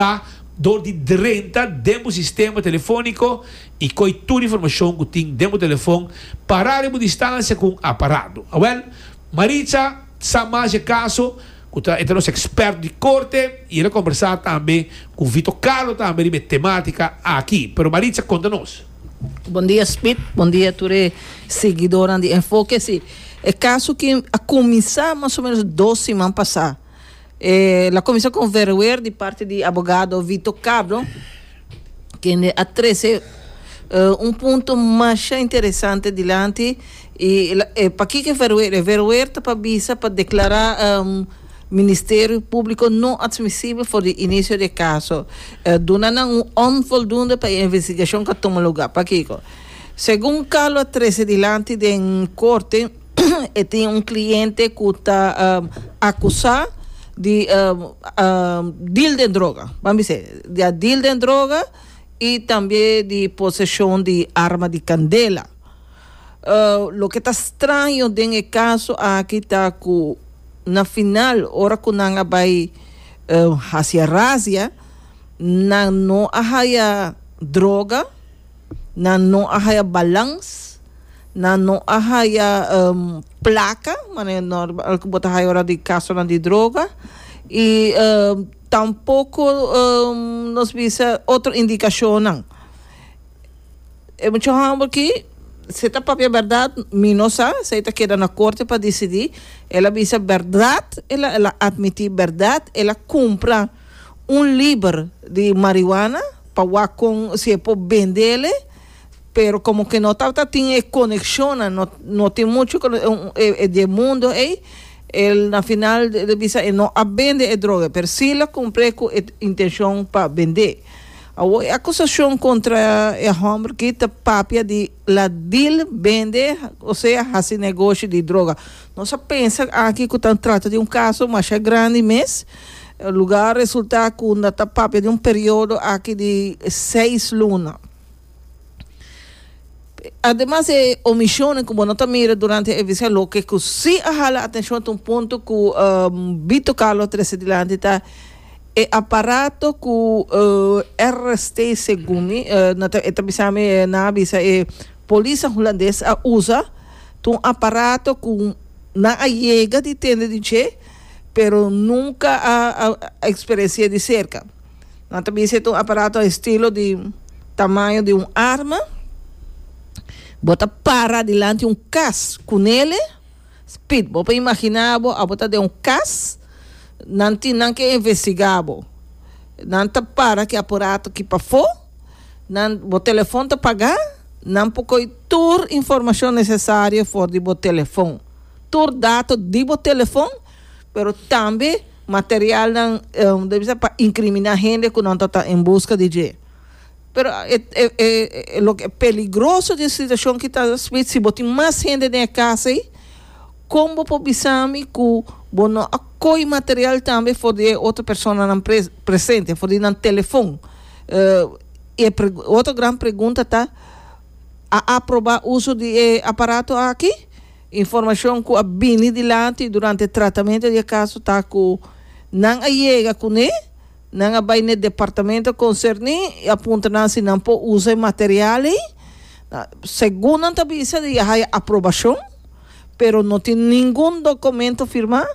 ta dor di drenta den bo sistema telefóniko i koi tur informashon ku tin den bo telefon pará riba un distansia ku un aparato. Awèl, Maritza sa mas e kaso ku ta e ta nos ekspèrt di korte i el a kombersá tambe ku Vito Carlo tambe riba e temátika aki. Pero Maritza konta nos. Bondia Smith, bondia tur e siguidónan di Enfoke. Si, e kaso aki a kuminsá mas o ménos dos siman pasá. E la cominsá cu un verhoer di parti di abogado Vito Cardo, kende a trece un punto masha interesante dilanti y pakiko e verhoer? E verhoer ta pa bisa pa declara Ministerio Publico no admisible for di inicio di e caso, duna nan un onvoldoende pa e investigacion cu a tuma lugar. Pakiko? Segun Carlo a trece dilanti den Corte, e tin un cliente cu ta acusa di deal den droga, vamos bisé di a deal den droga y tambe di posesion di arma di candela. loke ta straño den e caso aki ta cu na final ora cu nan a bay haci e razia nan no a haya droga, Nan no a haya balans, nan no a haya um, plaka, manera normal ku bo ta haya ora di kasonan di droga, i um, tampoko um, nos bisa otro indikashonnan. E mucha hòmber ki, si ta papia bèrdat, mi no sa, esei ta keda na korte pa disidí, el a bisa bèrdat, el a admití bèrdat, el a kumpra. Un liber di marihuana pa wak con si e por bendele pero como que no tabata tin e coneccionnan no no tin mucho e di e mundo ey el na final el bisa e no a bende e droga pero si lo compre cu e intencion pa bende awo e acusacion contra e homber aki ta papia di la deal bende osea haci negoshi di droga. Nos a pensa aki ku ta trata di un kaso masha grandi mes lugar a resulta ku unda ta papia di un periodo aki di seis luna. Ademas di e omisionan ku bo no ta mira durante e visita loke ku si a hala atenshon ta un punto ku Bito Carlo trese dilanti ta e aparato ku RST segun mi e ta bisa mi nan a bisa e polis holandes a usa. Ta un aparato cu nan a yega di tende di dje, pero nunca a experici'e di cerca. Nan ta bisa e ta un aparato estilo di tamaño di un arma. Bo ta para dilanti un cas cu nele, spit, bo por imagina bo abo ta den un cas, nan tin nan ke investiga bo. Nan ta para ki aparato ki pafo. Nan bo telefon ta pagá, nan por koy tur informashon nesesario for di bo telefon. Tur dato di bo telefon, pero tambe materialnan ta bisa pa inkriminá hende ku nan tabata en buska di dje. Pero e loke e peligroso di e situashon ki ta Smith, si bo tin mas hende den e kas ei, kon bo por bisa mi ku bo no a koy material tambe for di e otro personanan presente, for di nan telefon? e otro gran pregunta ta, a aprobá uso di e aparato aki? Informashon ku a bini dilanti durante e tratamentu di e kaso ta ku nan a yega kuné, nan a bai na e departamento konserní i a puntra nan si nan por usa e material ei. Segun nan ta bisa di ya haya aprobashon, pero no tin ningun dokumento firmá.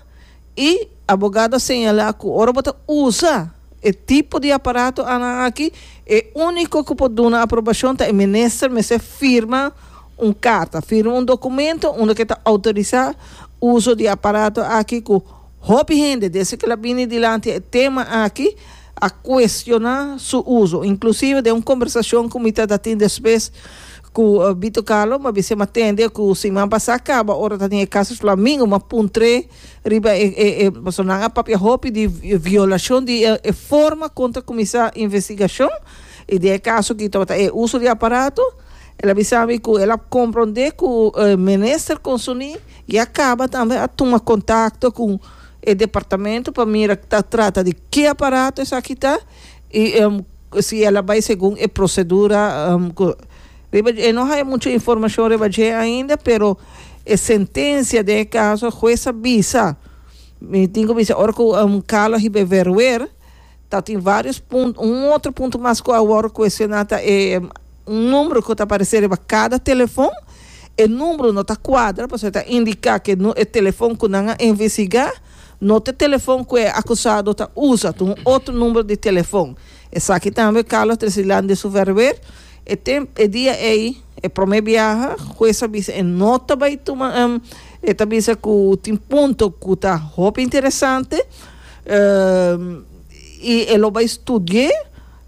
I abogado a señalá ku ora bo ta usa e tipo di aparato anan aki, e úniko ku por duna aprobashon ta e minister mester firma un karta, firma un dokumento unda ku e ta outorisá uso di e aparato aki ku hopi hende desde ku el a bini dilanti e tema aki a kuestioná su uso, inklusive den un kombersashon ku mi ta da tin despues Ku Bito Carlo m'a bisa m'a tende ku siman pasá kaba ora ta den e kaso Flamingo m'a puntr'é riba e e e personanan a papia hopi di violashon di e forma kon ta kuminsá investigashon i den e kaso aki tabata e uso di aparato el a bisa mi ku el a komprondé ku minister Consoní ya kaba tambe a tuma kontakto ku e departamento pa mira ta trata di ki aparato esaki ta Y si el a bay segun e procedura cu riba dje, no haya mucho informacion riba dje ainda, pero e sentencia den e caso e huez a bisa, mi tin cu bisa ora cu Carlo a hiba e verwer tatin varios punto, un otro punto mas cu a wor cuestiona ta e un numero cu ta aparece riba cada telefon, e numero no ta cuadra pasobra ta indica cu e telefon cu nan a investiga. No t'e telefon ku e akusado ta usa, ta un otro number di telefon. Esaki tambe Carlos Tresilan di su verwer. E tem, e dia ei, e prome biaha, hues a bisa e no ta bai tuma, e ta bisa ku tin punto ku ta hopi interesante i e lo bai studi'é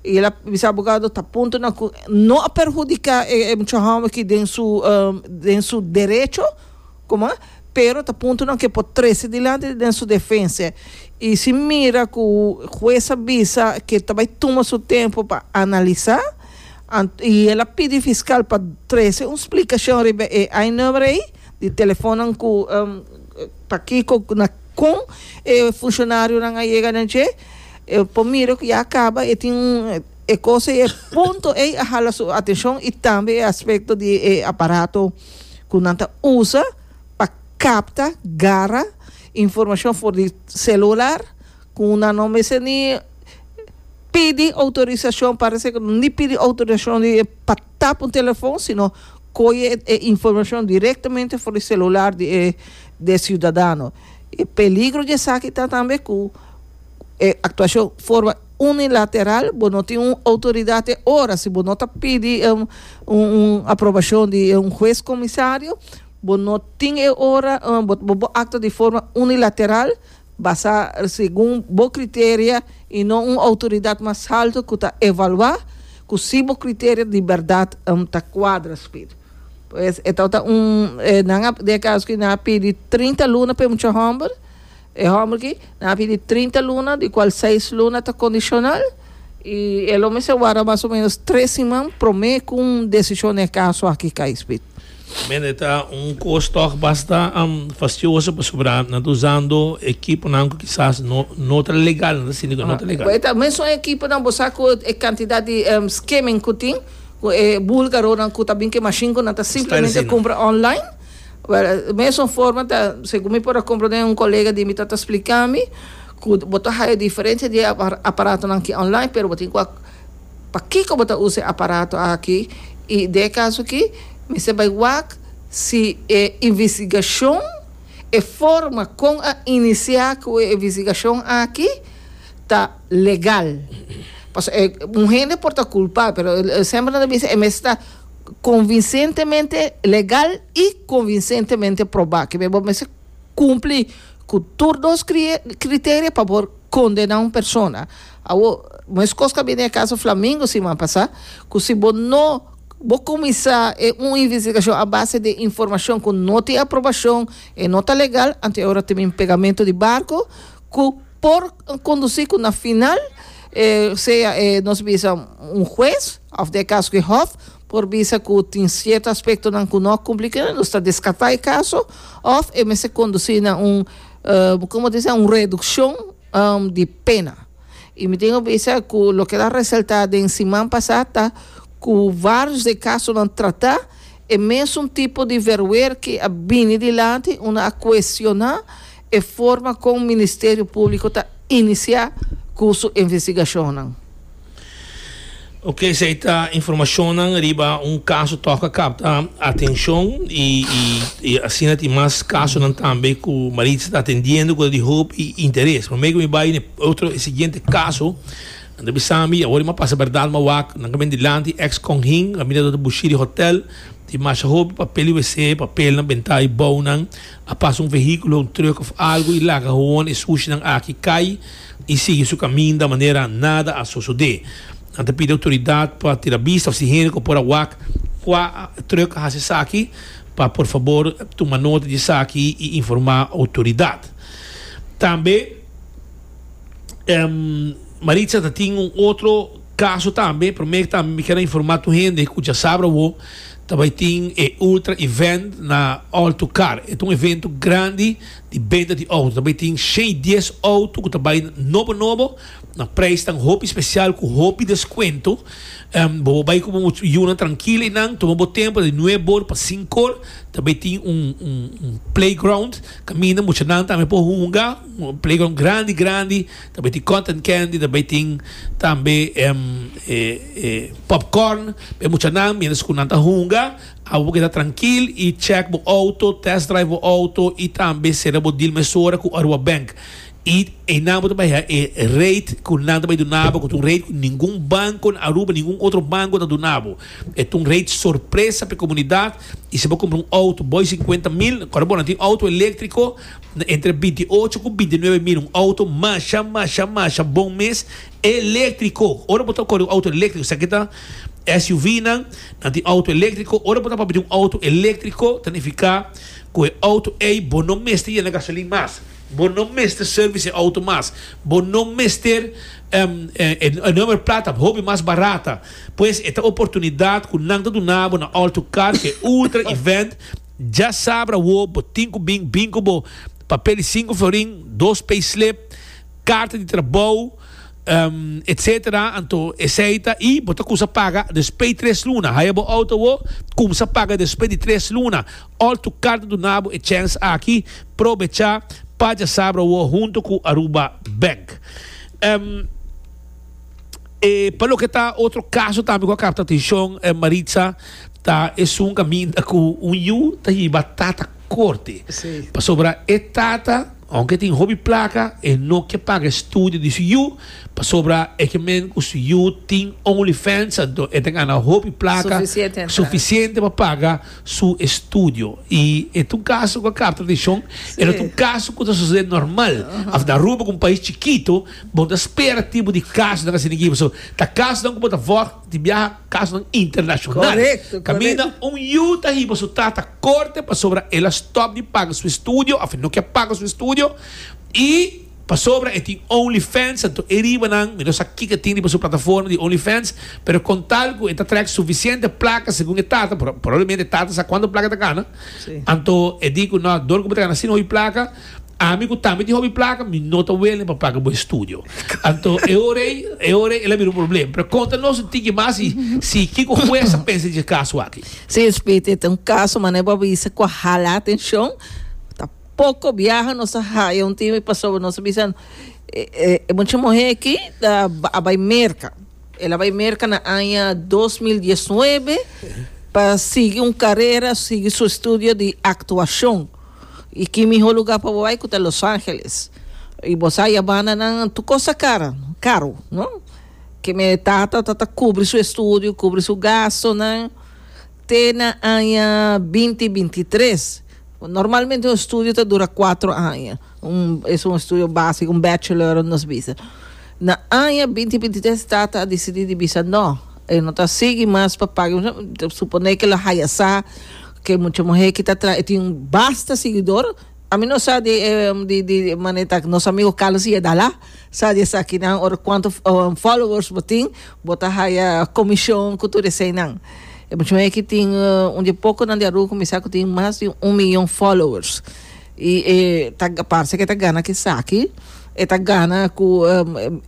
i el a bisa abogado ta punto nan ku no a perhudiká e mucha hòmber aki den su den su derecho. Kuma? Pero ta puntonan ke por trese dilanti den su defense y si mira cu hues a bisa ke ta bay tuma su tempo pa analisa ant y el a pidi fiscal pa trese un splicacion riba e I-number ey di telefonnan cu pa kico na con e funcionarionan a yega na dje e por mira cu ya a caba e tin un e cos ey e punto ey a hala su atencion y tambe e aspecto di e aparato ku nan ta usa pa kapta, gara, informashon for di selular ku nan no mester ni pidi outorisashon, parese ku ni pidi outorisashon di pa tap un telefon sino koye e informashon direktamente for di selular di e siudadano. E peligro di esaki ta tambe ku e actuacion forma unilateral, bo no tin un autoridad e ora, si bo no ta pidi un aprobacion di un huez comisario, bo no tin e ora, bo bo actua di forma unilateral, basa segun bo criteria y no un autoridad mas halto cu ta evalua cu si bo criteria di berdad ta cuadra spid. Pues e tabata un, nan a, den e caso aki nan a pidi trinta luna pa e mucha homber, E hòmber ki nan a pidi trinta luna, di kual seis luna ta kondishonal i e lo mester warda mas o ménos tres siman promé ku un desishon na e kaso aki kai spit. Mira, e ta un kos tòg basta fastioso pasobra nan ta usando ekiponan ku kisas no no ta legal, nan ta sinti ku no ta legal. Bo e ta mesun ekiponan, bo sa ku e kantidat di skimming ku tin, ku e bulgaronan ku ta bin ku e mashin ku nan ta simplemente kumpra online. Well, mesun forma ta, segun mi por a komprendé un kolega di mi ta ta splika mi ku bo ta haya diferensia di e aparatonan aki online, pero bo tin ku a pakiko bo ta usa e aparato aki i den e kaso aki mester bai wak si e investigashon, e forma kon a inisiá ku e investigashon aki ta legal. Pasobra un hende por ta kulpá, pero semper nan ta bisa e mester ta. konvinsentemente legal i konvinsentemente probá. Ke bai bo mester kumplí ku tur dos kriterio pa por kondená un persona. Awor, meskos ku a bini e kaso Flamingo siman pasá, ku si bo no, bo kuminsá e un investigashon a base di informashon ku no tin aprobashon, e no ta legal, anto e ora ta bin pegamentu di barko ku. por conduci cu na final sea e nos bisa un hues of den e caso cu e hof por bisa cu tin cierto aspectonan cu no a cumpli cu nos ta descarta e caso of e mester conduci na un como ta kibra un reduccion di pena y mi tin a bisa cu loke a resalta den siman pasa ta cu varios den e casonan trata e mesun tipo di verwer ki a bini dilanti unda a cuestiona. E forma kon Ministerio Públiko ta inisiá ku su investigashonnan. Ok, esei ta informashonnan riba un kaso tòka kapta atenshon i i asina tin mas kasonan tambe ku Maritza ta atendiendo ku ta di hoop interes. Promé ku mi bai n'e otro e siguiente kaso nan ta bisa mi awor ima pasa bèrdat ma wak nan kamen dilanti ex konhin a mira dor ta bushí di hotèl tin masha hopi papel di wc papelnan bentá i bounan. A pasa un vehíkulo, un trùk òf algu i laga hon e sushinan aki kai i sigui su kaminda manera nada a sosodé. Nan ta pidi outoridat pa tira bista òf si hende ku por a wak kua trùk a hasi esaki pa por fabor tuma nota di esaki i informá outoridat. Tambe Maritza ta tin un otro kaso tambe, promé tambe mi kier a informá tur hende ku djasabra awo. Ta bai tin e Ultra Event na Alto Car. E ta un evento grandi di benta di outo. Ta bai tin shei dies outo ku ta bai nobo nobo. Na preis tan hopi spesial ku hopi deskuento. Bo por bai ku bo yunan trankil einan. Tuma bo tempu di nuebe or pa sinku or. Ta bai tin un playground kaminda muchanan tambe por hunga. Un playground grandi grandi. Ta bay tin cotton candy, ta bay tin tambe popcorn. Bay mucha nan mientras cu nan ta hunga, abo bo keda trankil y check bo auto, test drive bo auto y tambe cera bo deal mesora cu Aruba Bank. Y eynan bo ta bay haga e rate cu nan ta bay duna bo, cu ta un rate cu ningun banco na Aruba, ningun otro banco ta duna bo. E ta un rate sorpresa pa e comunidad y si bo cumpra un auto boy cincuenta mil, ora bo na tin auto electrico, Na entre binti ocho ku binti nuebe mil un outo masha, masha, masha bon mes, eléktriko. Ora bo ta kore un outo eléktriko, sa ke ta SUVnan, nan tin outo eléktriko. Ora bo ta papia di un outo eléktriko, ta nifiká ku e outo ei bo no mester yena gasolin mas, bo no mester sèrbis e outo mas, bo no mester e nòmber plata hopi mas barata. Pues e ta oportunidat ku nan ta duna bo na All2Car ku e Ultra Event. Dja sabra wo, bo tin ku bin bin ku bo papel di sinku florin, dos payslip, karta di trabou, etc. Anto esei ta i bo ta kusa paga despe tres luna. Haya bo outo wo, kumsa paga despe di tres luna. Òl tur karta duna bo e chèns aki, probecha pa dja sabra wo huntu ku Aruba Bank. Eh, pa loke ta otro caso tambe cu a capta atencion, eh, Maritza, ta esun caminda cu un yu ta hiba tata corte. Sí. Pasobra e tata, aunke e tin hopi placa, e no ke paga e studio di su yu, pasobra e ke men cu su yu tin OnlyFans, anto e ta gana hopi placa, Suficiente entrada. suficiente pa paga su estudio. Y e ta un caso cu a capta atencion, e no ta un Sí. caso cu ta sucede normal. Aunke ta Aruba cu un pais chikito, Bo ta spera tipo di kasnan asina aki pasobra ta kasnan ku bo ta wòrdu di biaha, kasnan internashonal. Kaminda un yu ta hiba su tata korte pasobra el a stòp di paga su estudio òf e no ke paga su estudio i pasobra e tin only fans anto e riba nan mi no sa kiko e tin riba su plataforma di only fans pero kon tal ku e ta trèk sufisiente plaka segun e tata probablemente e tata sa kuantu plaka e ta gana anto e di ku nò dor ku bo ta gana asina hopi plaka. Ami ku tambe tin hopi plaka, mi no ta wele pa plaka bo e studio. Anto e ora ei, e ora ei el a bira un problem. Pero konta nos un tiki mas i si kiko hues a pensa di e kaso aki. Si e spiti e ta un kaso manera bo a bisa ku a hala atenshon, ta poko biaha nos a haya un timbe pasobra nos a bisa e mucha muhé aki ta a bai Merka. El a bai Merka na aña dos mil diesnuebe pa sigui un karera, sigui su estudio di aktuashon. Y ki miho lugar pa bo bay cu ta Los Angeles. Y bo sa ya banda nan tur cos ta cara, caro, no? Ke me tata ta ta cubri su estudio, cubri su gastonan te na aña binti binti tres. Normalmente un estudio ta dura cuatro aña, un es un estudio basico, un bachelor nos bisa. Na aña binti binti tres tata a dicidi di bisa no. E no ta sigui mas pa paga. Suponé ke lo haya sa ku e mucha muhé ki ta traha e tin basta siguidor. Ami no sa di di di manera ta nos amigo Carlos Higuera Dala sa di esakinan ora kuantu followers bo tin bo ta haya komishon ku tur eseinan. E mucha muhé ki tin un di e pokonan di Aruba kuminsá ku tin mas di un miyon followers i e ta parse ku e ta gana esaki e ta gana ku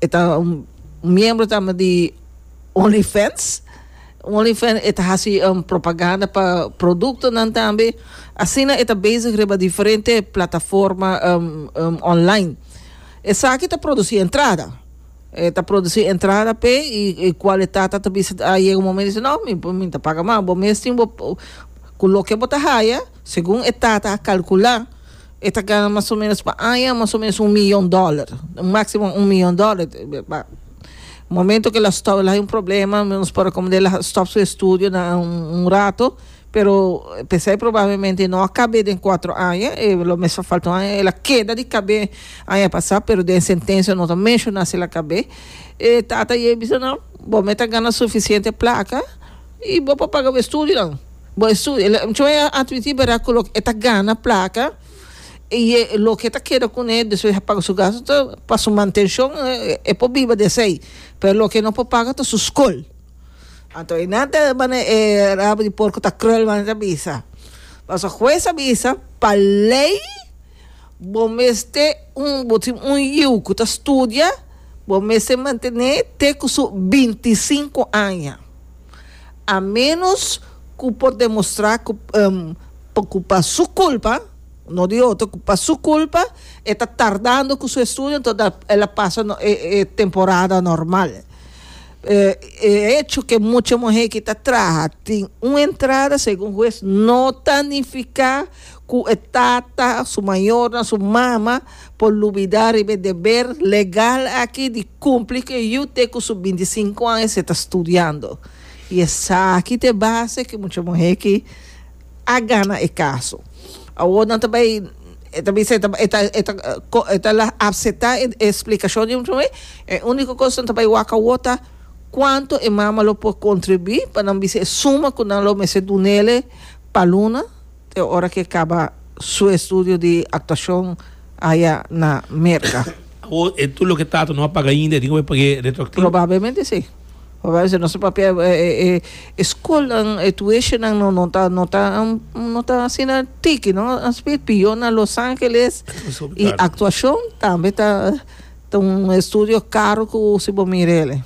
e ta un miembro tambe di. Onlyfans, Onlyfans e ta hasi propaganda pa produktonan tambe, asina e ta bezig riba diferente plataforma online. Esaki ta produsi entrada, e ta produsi entrada p'e i e kualitat ta ta bisa a yega un momento di no mi mi ta paga mas, bo mes tin bo ku loke bo ta haya segun e tata a kalkula e ta gana mas o menos pa aña mas o menos un miyon dòler, un máksimo un miyon dòler. Momento cu el a stop, el a hay un problema, nos por recomendar el a stop su estudio na un, un rato, pero pesey probablemente no a cabé den cuatro aña, e lo mes a falta un aña, el a keda di cabé aña pasá, pero den sentencia no ta mencioná si el a cabé. E tata i e bisa nan, Bo me ta gana suficiente placa i bo por paga bo estudionan. Bo estudio. El, el, chon e a admití berdad cu loke e ta gana placa. y e loke ta keda cune despues a paga su gasto ta pa su mantencion e por biba di esey pero loke no por paga ta su scol anto e nan ta manda e rabo di porco ta krul manda ta bisa paso huez a bisa pa ley bo mester un bo tin un yiu cu ta studia bo mester mantene te cu su binti cinco aña. A menos cu por demostra cu pa cu pa su culpa, no di otro, cu pa su culpa e ta tardando cu su estudio enton ta el a pasa e temporada normal. E hecho cu mucha muher aki ta traha tin un entrada segun huez no ta nifica ku e tata, su mayornan, su mama por lubidá riba e deber legal aki di kumpli ku e yu te ku su bintisinku an esei ta studiando. I esaki ta e base ku mucha muhé aki a gana e kaso. Awor nan ta bai, e ta bisa e ta e ta e ta e ta la apsetá e splikashon di mucha muhé, e úniko kos ku nan ta bai wak awor ta kuantu e mama lo por kontribuí pa nan bisa e suma ku nan lo mester dun'é pa luna, te ora ke kaba su estudio di aktuashon aya na Merka. Awor e tur loke Tato no a paga ainda e tin ku por pag'é retroaktivo? Probablemente si. Probablemente si. Nos ta papia e skolnan, e tueshonan no no ta no ta no ta asina tiki no. An spiet piyon na Los Angeles i aktuashon tambe ta ta un estudio karo ku si bo mira el.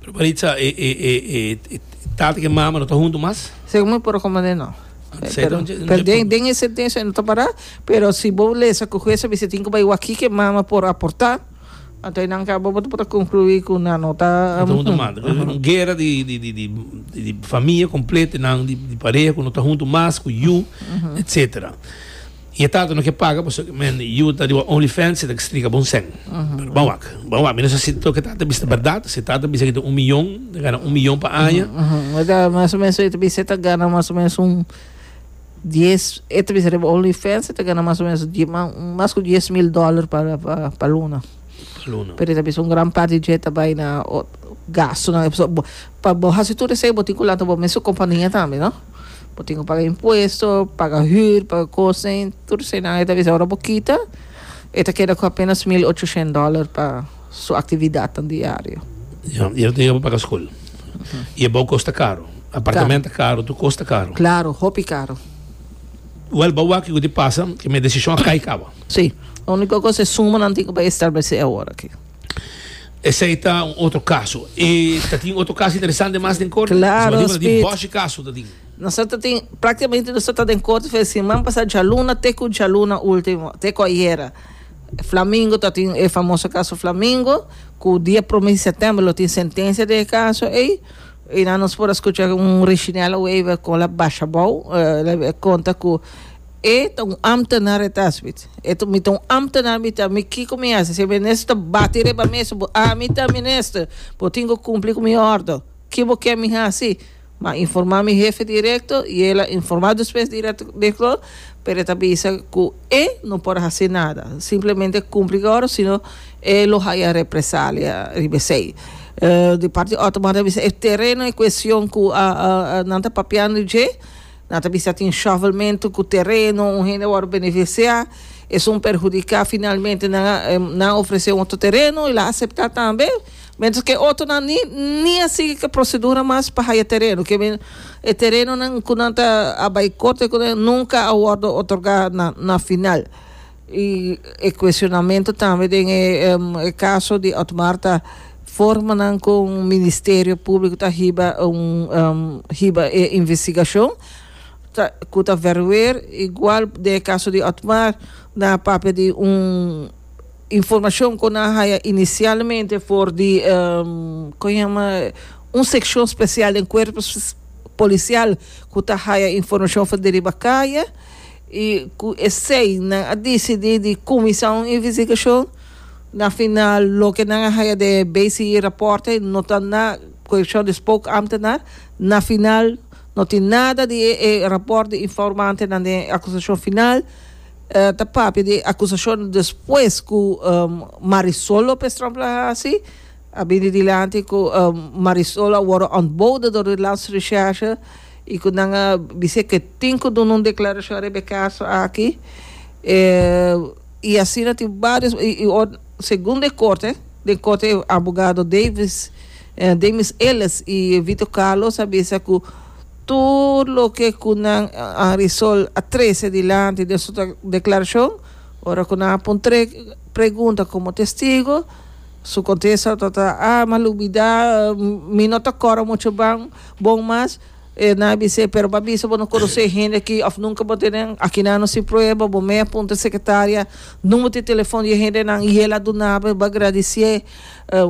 Pero Maritza e e e e tata ku e mama no ta huntu mas? Segun mi por rekomend'é no. Pero, pero den, den e sentencia e no ta pará, pero si bo lesa cu hues a bisa tin cu bai waki que mama por aportá, anto eynan ka bo bo ta por ta conclui cu nan no ta, No ta huntu mas. Aham. Un guera di, di, di, di, di, di famia completo, nan di, di pareha cu no ta huntu mas, cu yu, etcetera. Y e tata no ke paga paso men yu ta riba only fans y ta ke strika bon sèn. Pero ban wak, ban wak, mi no sa si tok e tata bisa berdad, si e tata bisa ke ta un miyon, ta gana un miyon pa aña. E ta mas o menos e ta bisa e ta gana mas o menos un dies, e ta bisa riba only fans e ta gana mas o menos die ma mas ku dies mil dòler pa pa pa luna. Pa luna. Pero e ta bisa un gran parti dje ta bai na ot gastunan, pa bo hasi tur esei bo tin ku lanta bo mes su kompania tambe, no? Bo tin cu paga impuesto, paga huur, paga cosen, tur eseinan. E ta bisa ora bo kita, e ta keda cu apenas mil ochoshent dollar pa su actividadnan diario. Ya, y e no tin yaba paga scol. Y e bou cos ta caro. Apartamento ta caro, tur cos ta caro. Claro, hopi caro. Wel, bo a wak kico tin pasa, cu mi e decision a cay caba. Si. Unico cos e sumanan tin cu bay establece awor aki. Esei ta un otro kaso. E ta tin otro kaso interesante mas den korte? Klaro, Nos tin bòshi kaso ta tin. Nos ta tin, praktikamente nos ta den korte for siman pasá djaluna te ku djaluna último, te ku ayera. Flamingo ta tin e famoso kaso Flamingo ku dia promé di sètèmber lo tin sentensia den e kaso ei. Einan nos por a skucha un Reginel Wever kon el a basha abou, el a konta ku, E ta un ambtenaar het Aswith. E ta mi ta un ambtenaar mi ta mi kiko mi hasi si minister ta bati riba mi su bo a mi ta minister bo tin ku kumpli ku mi ordo ki bo ke mi hasi ma informa mi hefe direkto i el a informa despues direkto pero e ta bisa ku e no por hasi nada simplemente kumpli ku e ordo sino e lo haya represalia riba esei di parti otro man ta bisa e tereno e kuestion ku nan ta papiando dje. Nan ta bisa tin shovelmentu ku tereno, un hende a wòrdu benefisiá, esun perhudiká, finalmente nan a nan a ofresé un otro tereno i el a aseptá tambe, mentras ku e otronan ni ni a sigui ku e prosedura mas pa haya tereno, ke men e terenonan ku nan ta a bai korte ku nan nunka a wòrdu otorgá na final. Y e cuestionamento tambe den e caso di Otmar ta formanan cu Ministerio Publico ta hiba un hiba e investigacion ta cu ta verweer igual den e caso di Otmar nan a papia di un informacion cu nan a haya inicialmente for di con yama un seccion special den Cuerpo Policial cu ta haya informacion for deriba caya I ku esei nan a disidí di kuminsá un investigashon. Na final loke nan a haña den e BCE rapòrtnan no ta na korekshon di spookamtenaar. Na final no tin nada di e rapòrt di informantenan den e akusashon final. Ta papia di e akusashonnan despues ku Marisol López Tromp a hasi, a bini dilanti ku Marisol a wòrdu ontbode dor di Landsrecherche. y cu nan a bis'é cu e tin cu duna un declaracion riba e caso aki, y asina tin varios, y segun den corte, den corte e abogado Davis, Damis Ellis y Vito Carlos a bisa cu tur loke cu nan a resol a trece dilanti den su declaracion, ora cu nan a pon tre pregunta como testigo, su contesta tabata, ah, mi a lubida, mi no ta cora mucho ban. Bon mas, e nan a bis'é, pero bo a bisa bo no konosé hende akí òf nunka bo a tene nan akí. Nan no sin prueba. Bo mei a punta e sekretaria nùmber di telefòn di e hendenan i el a duna bo. Bo a gradisié.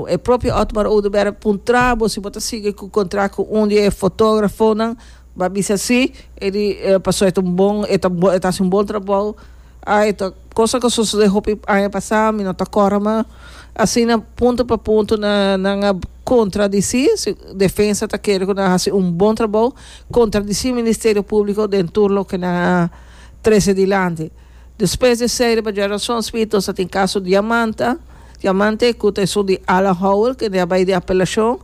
E propio Otmar Oduber a puntra bo si bo ta sigui ku kontrakt ku un di e fotógrafonan. Bo a bisa sí. E di, Pasobra e ta un bon, e ta hasi un bon trabou. Ai e ta cosa cu a sucede hopi aña pasa mi no ta cora ma asina punto pa punto nan a contradici defensa ta kere cu nan haci un bon trabao contradici ministerio publico den tur loke nan a trece dilanti despues di esey riba dje rason spi nos a tin caso diamanta diamante cu ta esun di Alan howell kende a bay di apelacion.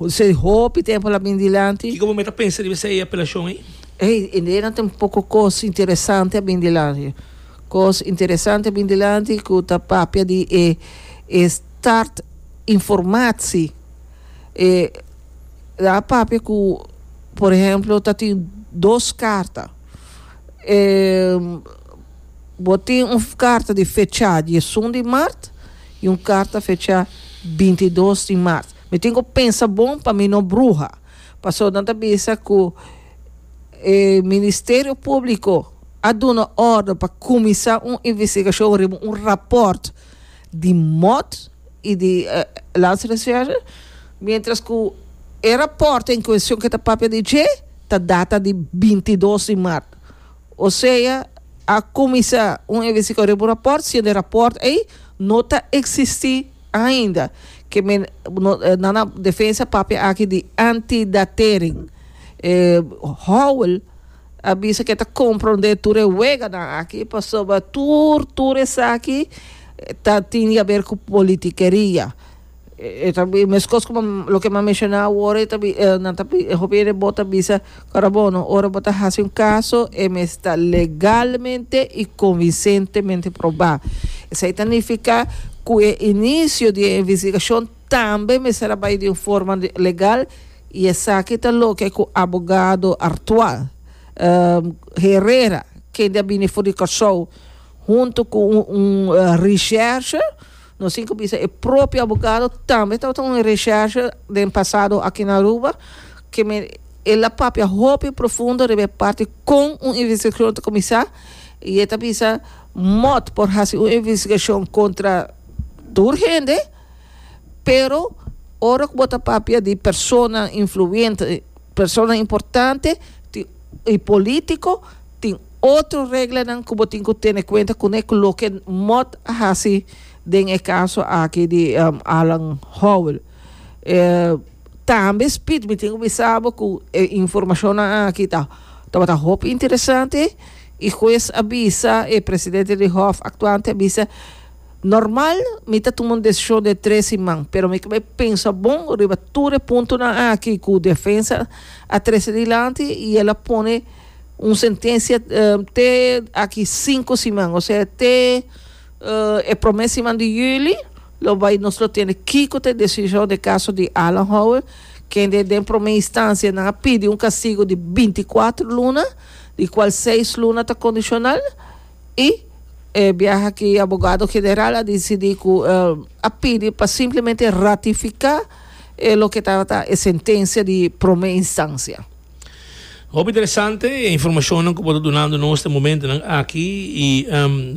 Esei hopi tempu la bin dilanti. Kiko bo mei ta pensa riba esei apelashon ei? Ei, indena ta un poko kos interesante a bin dilanti. Kos interesante a bin dilanti ku ta papia di e e start informatie. E a papia ku por ehemplo ta tin dos karta. Bo tin un karta di fechá diesun di mart i un karta fechá binti dos di mart. Mi tin ku pensa bon pa mi no bruha. Pasó nan ta bisa ku e Ministerio Públiko a duna òrdu pa kuminsá un investigashon riba un rapòrt di mòt i di Landsrecherche, miéntras ku e rapòrt en kueshon ku e ta papia di dje ta data di binti dos di mart. Osea, a kuminsá un investigashon riba un rapòrt si e rapòrt ei no ta eksistí ainda. Ke men nan a defensa papia aki di antidatering. E Howell a bisa ke ta komprondé tur e weganan aki pasobra tur tur esaki ta tin yaber ku politikeria. E ta e meskos ku loke m'a menshona awor, e ta nan ta e hopi hende bo ta bisa ora bono ora bo ta hasi un kaso e mes ta legalmente i konvinsentemente probá. Esei ta nifiká ku e inisio di e investigashon tambe mester a bai di un forma legal i esaki ta loke ku abogado artual Herrera kende a bini for di Kòrsou huntu ku un un recherche Nos tin cu bisa e propio abogado tambe tabata un recherche den pasado aki na Aruba que mi el a papia hopi profundo riba e parti con un investigacion ta comisa y e ta bisa mot por haci un investigacion contra tur hende pero ora cu bo ta papia di persona influente persona importante tin y politico tin Otro reglanan ku bo tin ku tene kuenta kuné ku loke Mott a hasi den e kaso aki di Alan Howell. Tambe Speed mi tin ku bisa bo ku e informashonnan aki ta tabata hopi interesante i hues a bisa e presidente di hof aktuante a bisa, Normal mi ta tuma un desishon den tres siman, pero mi kob'é pensa bon riba tur e puntonan aki ku defensa a trese dilanti i el a pone un sentencia te aki cinco siman o sea te e prome siman di juli lo bay nos lo tene kico ta e decision den caso di Alan Howard kende den prome instancia nan a pidi un castigo di binti cuatro luna di cual seis luna ta condicional y e biaha aki abogado general a dicidi cu a pidi pa simplemente ratifica e loke tabata e sentencia di prome instancia. Hopi interesante e informacionnan cu bo ta dunando nos den momentonan aki y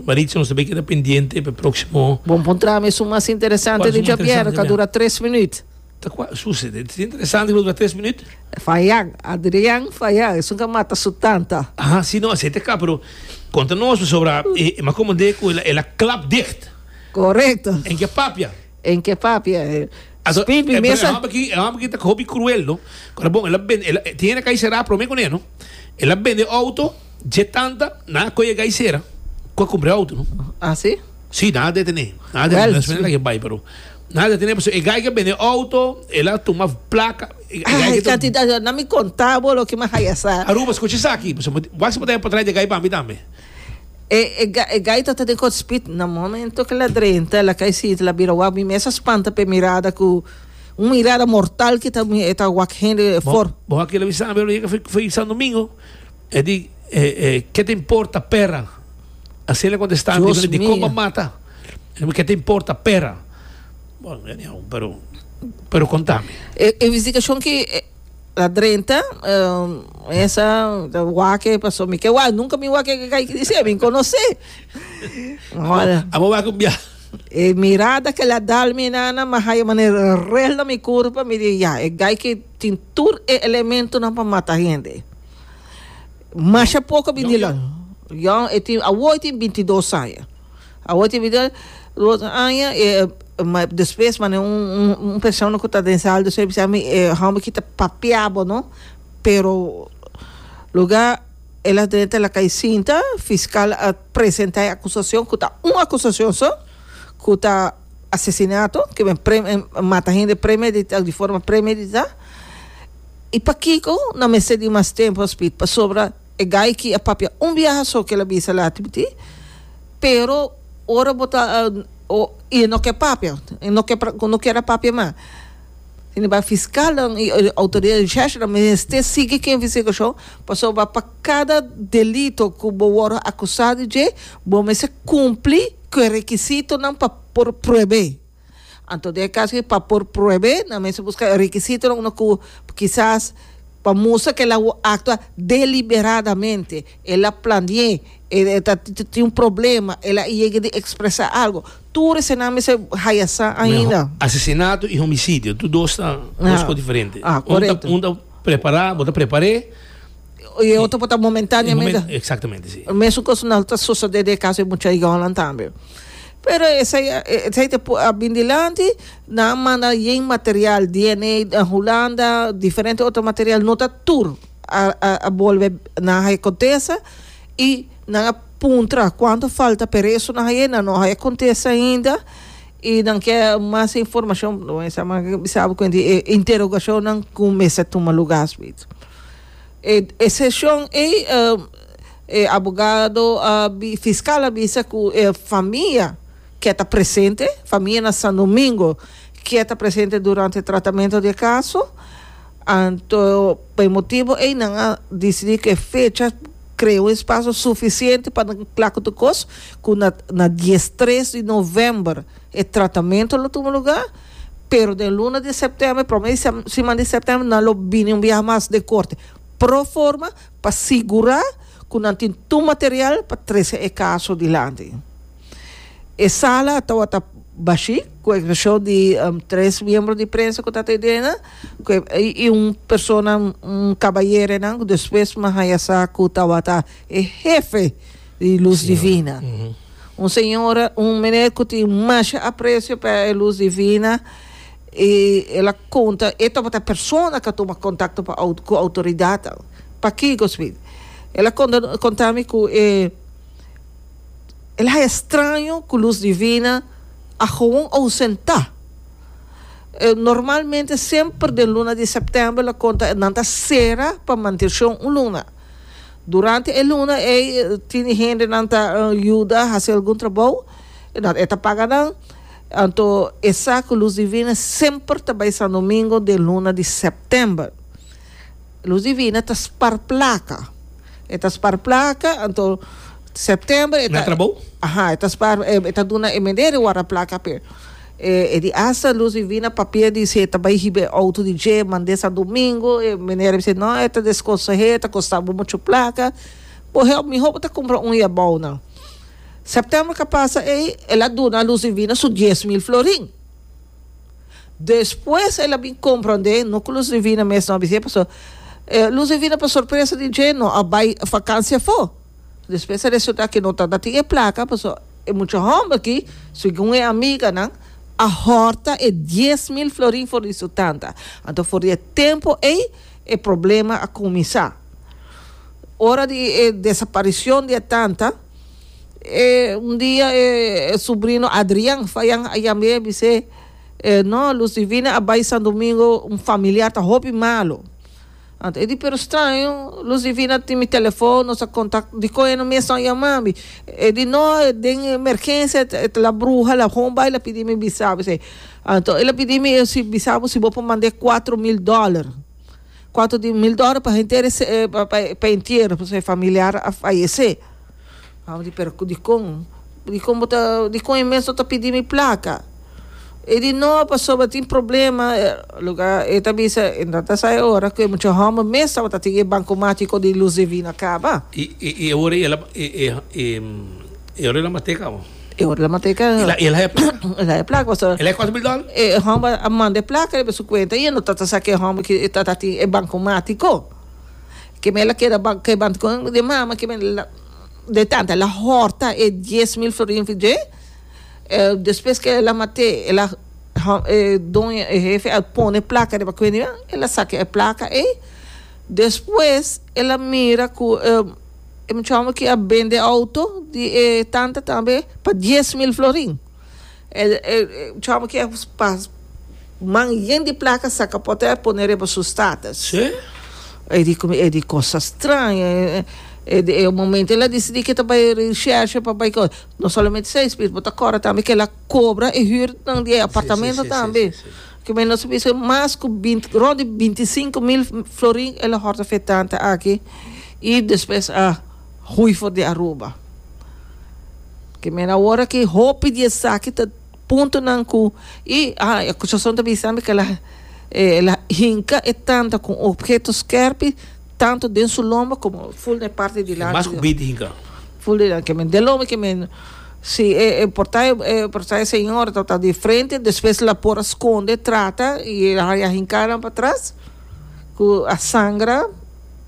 Maritza nos ta bay keda pendiente p'e proximo. Bo npuntra mi su mas interesante di djabier ta dura tres minuut. Ta cua? Suse, e tin interesante cu lo dura tres minuut? Fayan, Adrian Fayan, esun ca mata su tanta. Aha, si, no, esey ta caba, pero conta nos pasobra e mas comande cu el a clap dicht. Corecto. En ke papia? En ke papia. Aso e e e homber ki e homber ki ta hopi cruel no kora bon el a bende el tiene kai sera prome kune no el a bende auto dje tanta na ko e kai sera ko kumbre auto no Así? si na detene na detene Well, despues na ke bai pero na detene paso e kai ke bende auto el a tuma plaka e kai Ay, ke to cantidad, na mi contabo lo que me hayasa. Aruba escucha esaki paso wak si por trae de kai pambi tambe E e gaita ta den kòt spit. Na momento ke la drenta, la kai siti, la bira wak. Mi mes a spanta p'e mirada ku un mirada mortal ke ta e ta wak hende for. Bo a kere bisa mi lo yega fo'i sandumingo. E di, E e ke ta importa pèra? Asina el a kontestá mi. Dios mio! Komba mata? Ke ta importa pèra? Bon, anyhow, pero pero kontá mi. E investigashon ke La drenta mesa ta wake paso mi ke wa nunca mi wake ke kai kisi mi conoce amo wake un bia e mirada ke la dal mi nana ma haya manera rel na mi curpa mi di ya e gai ke tin tur e elemento nan pa mata hende masha poco bindi long Jon e tin awo e tin bintidos aña Awor tin bida e otro aña e despues mane un persona cu ta den sala di soy bisa mi e homber aki ta papia bo no pero luga el a drenta la cay sinta fiscal a presenta e acusacion cu ta un acusacion so cu ta asesinato cu men mata hende premedita di forma premedita y pakico no mester di mas tempo hospital pasobra E gaiky a papia un biaha so kel a bisa lati bo ti pero ora bo ta y no ke papia no ke no kier a papia mas sin embargo fiscalnan y autoridad recherchanan mester sigui cu investigacion pasobra pa cada delito cu bo wor acusa di dje bo mester cumpli cu e requisitonan pa por pruebe. Anto den e caso aki pa por pruebe nan mester busca e requisitonan una cu kisas pa mustra cu el a actua deliberadamente, el a planie, e ta tin un problema, el a yega di expresa algo, tur esenan mester haya sa ainda. Asesinato y homicidio tur dos ta dos cos diferente, un ta prepara, bo ta prepare, y e otro por ta momentaneamente, exactamente si, mesun cos na ta sucede den e caso di e muchachi Yoland tambe. Pero esei esei ta por a bin dilanti nan a manda yen material DNA den Hulanda diferente otro material no ta tur a a a bolbe nan haya contesta y nan a puntra cuanto falta pero eso nan haya nan no haya contesta ainda y nan ke mas informacion lo mester a manga ke bisabo kuenti e interrogacionnan ku mester tuma lugar. E seshon ei e abogado a bi fiskal a bisa ku e famia ke ta presente famia na San Domingo ke ta presente durante tratamento di e kaso anto pa e motibu ei nan a disidi ku e fecha krea un espaso sufisiente pa nan kla ku tur kos ku na na dies tres di novèmber e tratamento lo tuma lugar. Pero den luna di septiember, prome siman di septiember, nan lo bini un biaha mas den Korte pro forma pa sigurá ku nan tin tur material pa trese e kaso dilanti. E sala a tabata bashí, ku eksepshon di tres miembro di prensa ku ta ta idena, ku i un persona, un kabayerenan, ku despues mi a haña sa ku tabata e hefe. di luz divina. Un señora, un meneer cu tin masha aprecio pa e luz divina, y el a conta, e tabata persona ca tuma contacto pa au, cu autoridadnan. Paki, Goswin? El a conta, conta mi cu e, el a haya straño cu luz divina a gewoon ausenta. E, normalmente semper den luna di september, el a conta, nan ta cera pa mantencion un luna. Durante e luna ei tin di hendenan ta yuda hasi algun trabou, i nòt e ta paga nan. Anto e sa ku Luz Divina semper ta bai sandomingo den luna di sèptèmber. Luz Divina ta spar plaka. E ta spar plaka, anto sèptèmber e ta. Na trabou? Aha, e ta spar, e ta duna e mender di wòrda plaka p'e. E di Esther Luz Divina papia di si e ta bai hiba e outo di dje mande sa domingo e mener a bisa no e ta desconsehé e ta costa bo mucho placa bo help miho bo ta cumpra un ya bao nan September ca pasa ey el a duna Luz Divina su dies mil florin despues el a bin comprende no cu Luz Divina mes no a bisa pasobra Luz Divina pa sorpresa di dje no a bai vacancia afo. Despues a resulta ke no tabata tin e plaka paso e mucha homber aki segun e amiganan a horta e dies mil florin for di su tanta. Anto for di e tempo ey e problema a kuminsá. Ora di e desaparicion di e tanta e un dia e subrino Adrian Fayan a yam'é a bis'é, No, Luz Divina a bai Sandomingo un familiar ta hopi malo. Anto e di pero straño, los di vina tin mi telefon, nos a kontak, dikon e no mes nan yama mi? E di no, e den emergensia e ta la bruha, la home bai la pidi mi bisa bo esei. Anto el a pidi mi si bisa bo si bo por manda e kuatro mil dòler, kuatro mil dòler pa henter pa e entierro, pasobra e familiar a fayesé. Abo di pero dikon dikon bo ta dikon e mes no ta pidi mi plaka e di no pasobra tin problema loke e ta bisa e no ta sa e ora ku e mucha hòmber mes tabata tin e banko matico di luz divina kaba i i i e ora ela e e e e ora ela mate kaba e ora ela mate kaba i la ela e plaka ela e plaka pasobra ela e kos mil dòler e hòmber a manda e plaka riba su kuenta i e no ta ta sa ku e hòmber ki ta ta tin e banko matico. Ke mei la keda ba ke banta kon de mama ke mei la de tanta la horta e dies mil florin fi dje e despues ke el a mate el a e doño e hefe a pone e plaka riba kuende mia el a saka e plaka ei despues el a mira ku e e muchacho aki a bende auto di e tanta tambe pa dies mil florin. Chama ki man yen di plaka saka pote a pone riba su status. Sí. E di como e di cosa extraña. E di e momento el a decidi que ta bay recherche pa bay cos. No solamente esey speed bo ta corre tambe que la cobra e huurnan di e apartamento tambe. Sí, sí, sí, sí. Kibe nos a bisa mas cu binti rond di binti cinco mil florin el a horta fetante aki y despues a. Hui for di Aruba. Ke mera awor aki hopi di esaki ta puntonan ku i a akusashon ta bisambi ke el a el a hinka e tanta ku un opheto skèrpi tantu den su lomba komo ful na e parti di lanti. Mas ku bit hinka. Ful di lanti kemen den lomba kemen si e e portai e portai señor tabata di frente despues el a por a skonde trata i el a haña hinkanan patras ku a sangra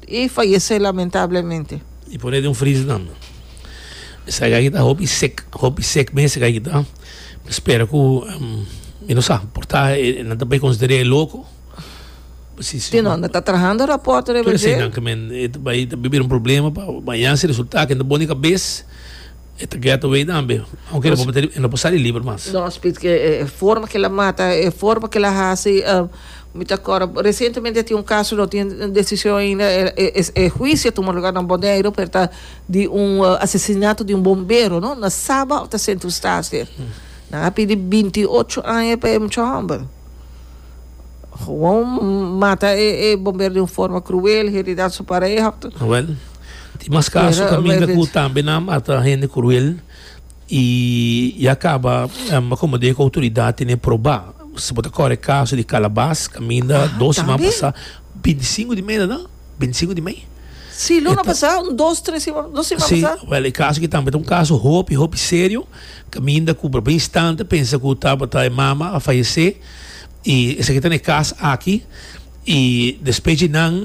E fayesé lamentablemente. E poné den un freezer tambe. Esaki aki ta hopi sek, hopi sek mes esaki ta. Mi spera ku mi no sa, por ta nan ta bai konsider'é e loko. Tin nan, nan ta trahando rapòrto riba dje. Tur eseinan ke men e ta bai ta bira un problema pa baña si resulta ke nan ta bon di kabes. E ta get away tambe. Aunke e no por mete, e no por sali liber mas. No, Spits ke e forma ke el a mata, e forma ke el a hasi, mi ta acorda recientemente tin un caso, no tin decision ainda, e huicio a tuma lugar na Boneiru, pero ta di un asesinato di un bombero, no, na Saba ta Sint Eustatius. Nan a pidi binti ocho aña pa e mucha homber. Gewoon mata e bomber di un forma cruel, heridat su pareha. Wel, tin mas caso caminda cu tambe nan a mata hende cruel y ya caba como di e autoridad tene proba. Si bo ta core e caso di Calabas caminda dos siman pasa, binti i sinku di mei ta na? Binti i sinku di mei. Si, luna pasa, un dos, tres siman, dos siman pasa. Si, wel e caso aki tambe ta un caso hopi, hopi serio, caminda cu proba instante pensa cu tabata e mama a fayece. Y esaki ta na e cas aki. Y despues dje nan,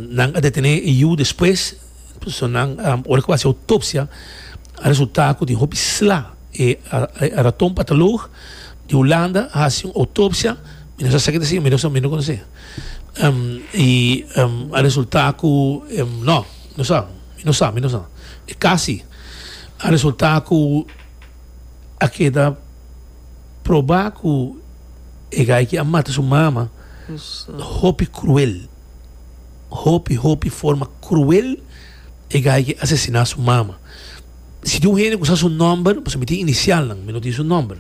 nan a detene e yu despues. So nan, ora cu bo a haci autopsia, a resulta cu tin hopi sla. E raton patoloog di Hulanda a haci un autopsia, mi no sa esaki ta si, mi no sa, mi no conoce. Y a resulta cu, no, mi no sa, mi no sa, mi no sa. E cas si. A resulta cu a keda. proba cu e gaiky a mata su mama hopi cruel hopi hopi forma cruel e gaiky asesina su mama si tin un hende cu sa su nomber pasobra mi tin inicial nan mi no tin su nomber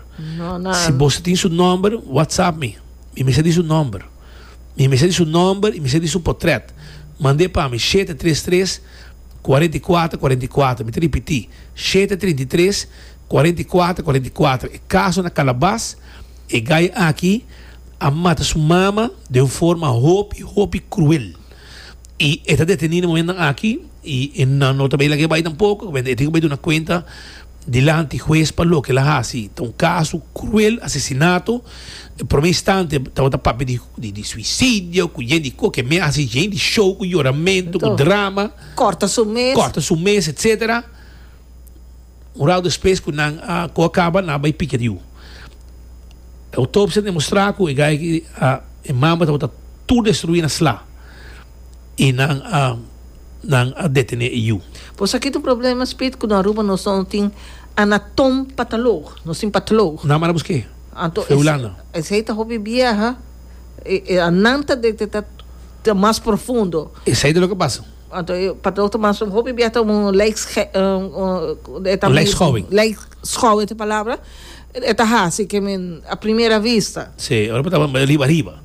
si bos tin su nomber whatsapp mi mi mester di su nomber mi mester di su nomber y mi mester di su potret mande pa mi shete tres tres cuarenta y cuatro cuarenta y cuatro mi ta ripiti shete treinta y tres Cuarenta y cuatro cuarenta y cuatro e caso na Calabas e gay aki a mata su mama den un forma hopi hopi cruel y e ta deteni na momentonan aki y e nan no ta bay laga e bay tampoco caminda e tin cu bay duna cuenta dilanti huez pa loke el a haci ta un caso cruel asesinato den prome instante tabata papia di di di suicidio cu yen di cu ke me haci yen di show cu yoramento cu drama corta su mes corta su mes etcetera. Un rau despues ku nan a ku a kaba, nan a bai pika riu. E autopsia a demostrá ku e gaya ki a e mamba tabata tur destruí na sla i nan a nan a detené e yu. Por esaki ta un problema Spit ku na Aruba nos no tin anatom patolog, nos tin patolog. Nan a manda busk'é Anto fu Hulanda. esei ta hopi bieha, e e nan ta detetá ta mas profundo. Esei ta loke pasa. Anto e patrou ta masa un hopi biaha ta un lijkscholing. Lijkscholing ta e palabra. E ta hasi ke men a primera vista. Sí, ora por tabata riba riba.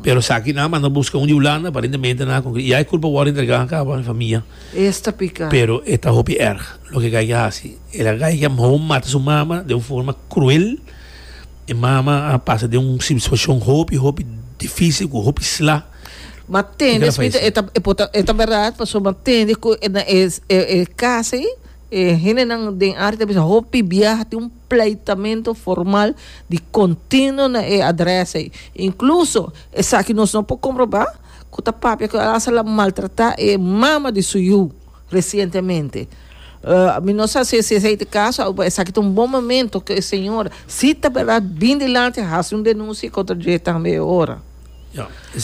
Pero esaki nan a manda buska un di Hulanda, aparentemente nan a conclui ya e culpa wòrdu entrega aca pa mi famia. Es ta pica. Pero e ta hopi erg loke e gaiga a hasi. El a gaiga mho mata su mama den un forma cruel. E mama a pasa den un situacion hopi hopi dificil cu hopi sla. Ma tende smita e ta e pota e ta berat paso ma tende ku e na e e, e kasa i e hendenan den área ta bisa hopi biaha tin un pleitamento formal di kontinuo na e adresa ei inkluso esaki nos no por komprobá ku ta papia ku el a hasta la maltratá e mama di su yu resientemente mi no sa si si esei ta e kaso awe esaki ta un bon momento ku e señora si ta berat bin dilanti hasi un denunsia kontra dje tambe e ora.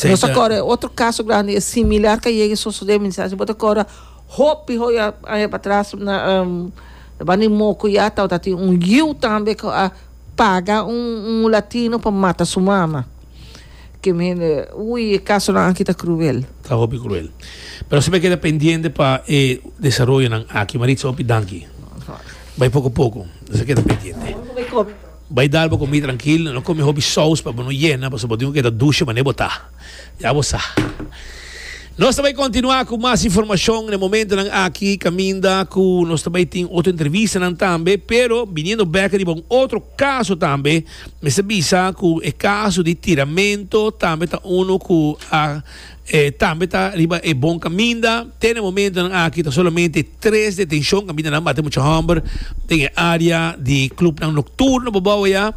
Nos ta kòrda e otro kaso grandi e similar ka yega sosodé misa si bo ta kòrda hopi hopi aña patras na banda di Mokuyá tabata tin un yiu tambe ku a paga un un mulatino pa mata su mama ke mi hende ui e kasonan aki ta kruel. Ta hopi kruel pero nos a keda pendiente pa e desaroyonan aki Maritza hopi danki bai poko poko nos a keda pendiente. Bai dal bo komi trankil, no komi hopi sous pa bo no yena pasobra bo tin ku keda dushe manera bo ta. Ya bo sa. Nos ta bai kontinuá ku mas informashon na e momentunan aki kaminda ku nos ta bai tin otro entrevistanan tambe, pero biniendo bèk riba un otro kaso tambe, mester bisa ku e kaso di tiramentu tambe ta unu ku a E tambe ta riba e bon kaminda. Te na e momentonan aki ta solamente tres detenshon. Kamindanan bate mucha hòmber den e área di klupnan nokturno Bobou ayá.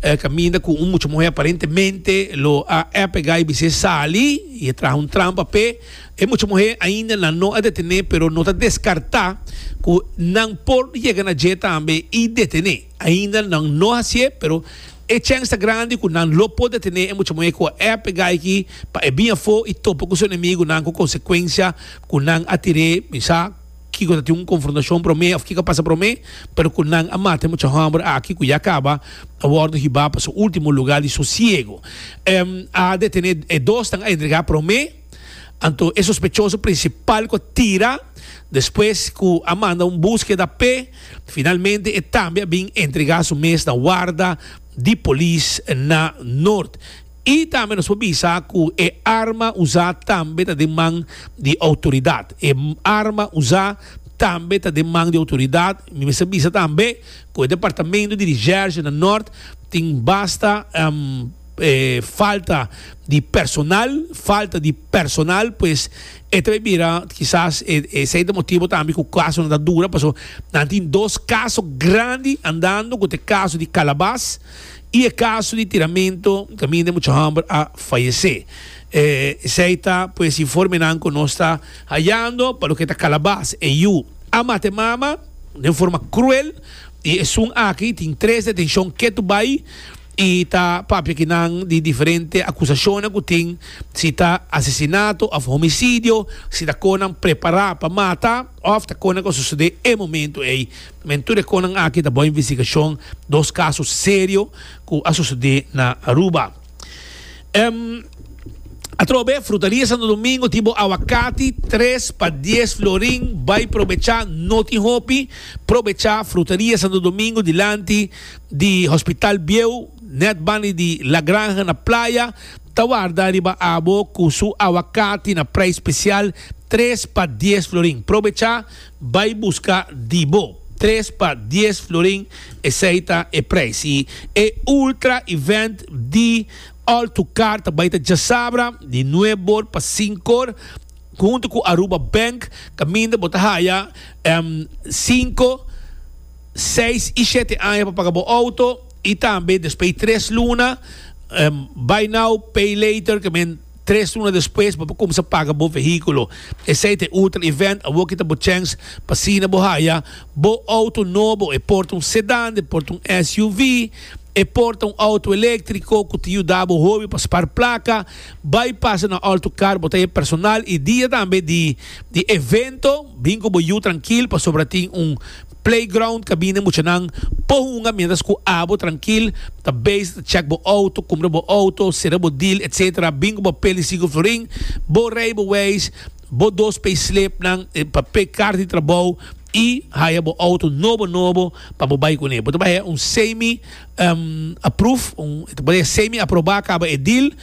E kaminda ku un mucha muhé aparentemente lo a èpega i bis'é sali i e traha un trampa p'e. E mucha muhé ainda nan no a detené pero no ta deskartá ku nan por yega na dje tambe i detené. Ainda nan no hacié, pero e chèns ta grandi cu nan lo por detené e muchamuhé cu a ep e gaichi pa e bin afó i topa cu su enemigunan cu consecuencia cu nan a tir'é, mi sa kico ta tin un confrontacion promé of kico a pasa promé, pero cu nan a mata e mucha homber aki cu ya caba a wordo hibá pa su ultimo lugar di sosiego. A detené e dosnan a entregá promé. Anto e sospechoso principal cu a tira despues cu a manda un buskeda p'e, finalmente e tambe a bin entrega su mes na warda di polis na Noord. Y tambe nos por bisa cu e arma usa tambe ta den man di autoridad. E arma usa tambe ta den man di autoridad. Mi mester bisa tambe cu e departamento di recherche na Noord tin basta falta di personal, falta di personal pues e ta bira kisas esei ta motibo tambe ku kasonan ta dura paso nan tin dos kaso grandi andando ku ta e kaso di Kalabas i e kaso di tiramento kaminda mucha hòmber a fayese esei ta pues informenan ku nos ta hayando pa loke ta Kalabas e yu a mata e mama den forma kruel i esun aki tin tres detenshon ketu bai. I ta papia ki nan di diferente akusashonnan ku tin, si ta asesinato òf homisidio, si ta kon nan prepará pa mata òf ta kon nan ku a susedé e momentu ei. Men tur e konnan aki ta bou investigashon dos kaso serio ku a susedé na Aruba. Em Atrobe Frutaria Santo Domingo tin bo awakati tres pa dies florin, bai probechá, no tin hopi, probechá Frutaria Santo Domingo dilanti. di Hospital Bieu, Netban y di La Granja na Playa ta warda riba abo cu su aguacati na prijs special tres pa dies florin. Probecha bay busca di bo, tres pa dies florin esey ta e prijs. Y e ultra event di All to Car ta bay ta djasabra di nueb or pa sink or hunto cu Aruba Bank caminda bo ta haya cinco. seis i shete aña pa paga bo outo i tambe despues di tres luna, buy now pay later, ke men tres luna despues bo por kumsa paga bo vehíkulo. Esei ta e ultra event awor ki ta bo chèns pa asina bo haya bo outo nobo, e por ta un sedàn, e por ta un SUV, e por ta un outo eléktriko ku ta yuda bo hopi pa spar plaka. Bai pasa na Autocar, bo ta haya personal i dia tambe di evento, bin ku bo yu trankil pasobra tin un Playground kabine muchanan po hunga mientras ku abo trankil ta bezi ta chèk bo outo kumpra bo outo sera bo dil etc bin ku bo peli siku florin bo reibeweis bo dos payslipnan e papé karta di trabou i haya bo outo nobo nobo pa bo bai kuné bo ta bai un semi approve e ta bai semi aproba kaba e dil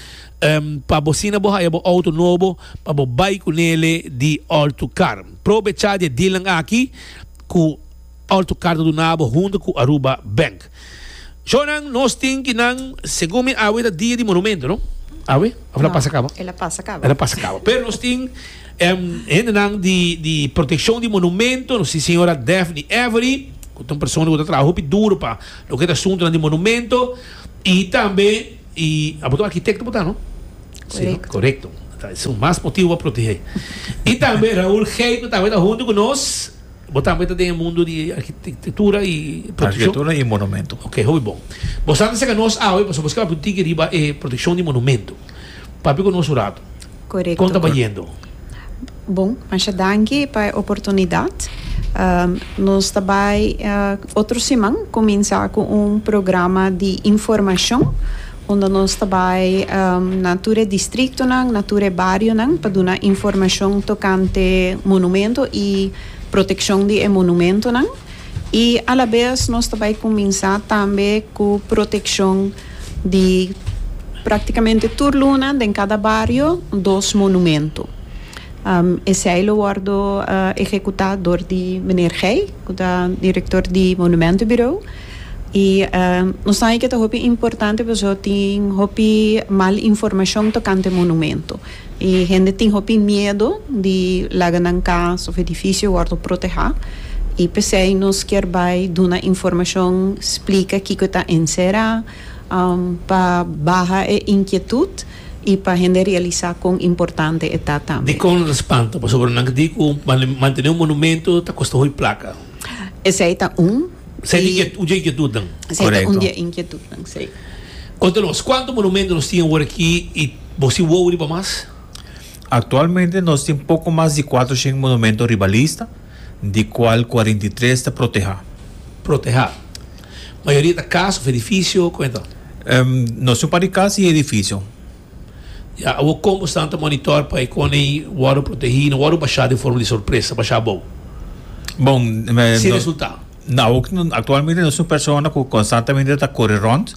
pa bo asina bo haya bo outo nobo pa bo bai kunele di Altocar. Probecha di e dealnan aki ku Alto Carta duna bo huntu ku Aruba Bank. Shownan nos tin ki nan segun mi awe ta dia di monumento no? Awe? Of el a pasa kaba? El a pasa kaba. El a pasa kaba. Pero nos tin em, hendenan di, di protekshon di monumento, nos tin señora Daphne Avery, ku ta un persona ku ta trabaha hopi duro pa loke ta asuntonan di monumento, i tambe Y abo ta un arquitecto bo ta no? Si no? Corecto. Ta es un mas motivo pa protege. Y tambe Raul Geit no tambe ta hunto cu nos. Bo tambe ta den e mundo di arquitectura y proteccion. Arquitectura y monumento. Ok, hopi bon. Bo sa ta seca nos awe pasobra bo scaba puntichi riba e proteccion di monumento. Papia cu nos un rato. Correcto. Con ta bayendo? Bon, masha danki pa e oportunidad. Nos ta bay otro siman cuminsa cu un programa di informacion unda nos ta bay na tur e distritonan, na tur e barionan pa duna informacion tocante monumento y proteccion di e monumentonan. Y a la vez nos ta bay cuminsa tambe cu proteccion. di practicamente tur luna den cada bario dos monumento. Esey lo wordo ehecuta door di Meneer Gey cu ta Director di Monumento Bureau. Y nos ta hopi importante pasobra tin hopi mal informacion tocante monumento. E hende tin hopi miedo di laga nan cas of edificio wordo proteha y pesey nos kier bay duna informacion splica kico e ta encera pa baha e inquietud y pa hende realisa con importante e ta tambe. Dicon lo spanta? Pasobra nan di cu mantene un monumento ta costa hoy placa. Esey ta un. Esey ta un di e inquietudnan. Esey ta un di e inquietudnan, si. Conta nos, cuanto monumento nos tin awor aki y. Bo si wou riba mas? Aktualmente nos tin poko mas di kuater shen monumento riba lista, di kual kuarenta i tres ta protehá. Protehá. Mayoria ta kas òf edifisio? Kome ta? Nos tin un par di kas i edifisio. Ya. Awor kon bo stan ta monitor pa e kone i wòrdu protehí i no wòrdu bashá den forma di sorpresa bashá abou? Bon, nos. Sin resultá. Awor, aktualmente nos tin un persona ku konstantamente ta kore rònt.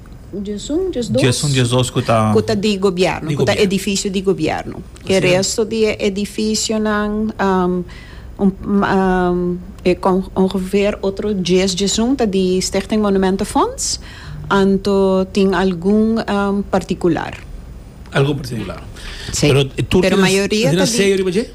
Djesun djesdos ku ta. Ku ta di gobièrnu, ku ta edifisio di gobièrnu. E resto di e edifisionan, ongeveer otro djes djesun ta di Stichting Monumentenfonds, anto tin algun partikular. Algun partikular. Pero tur tin aseo riba dje?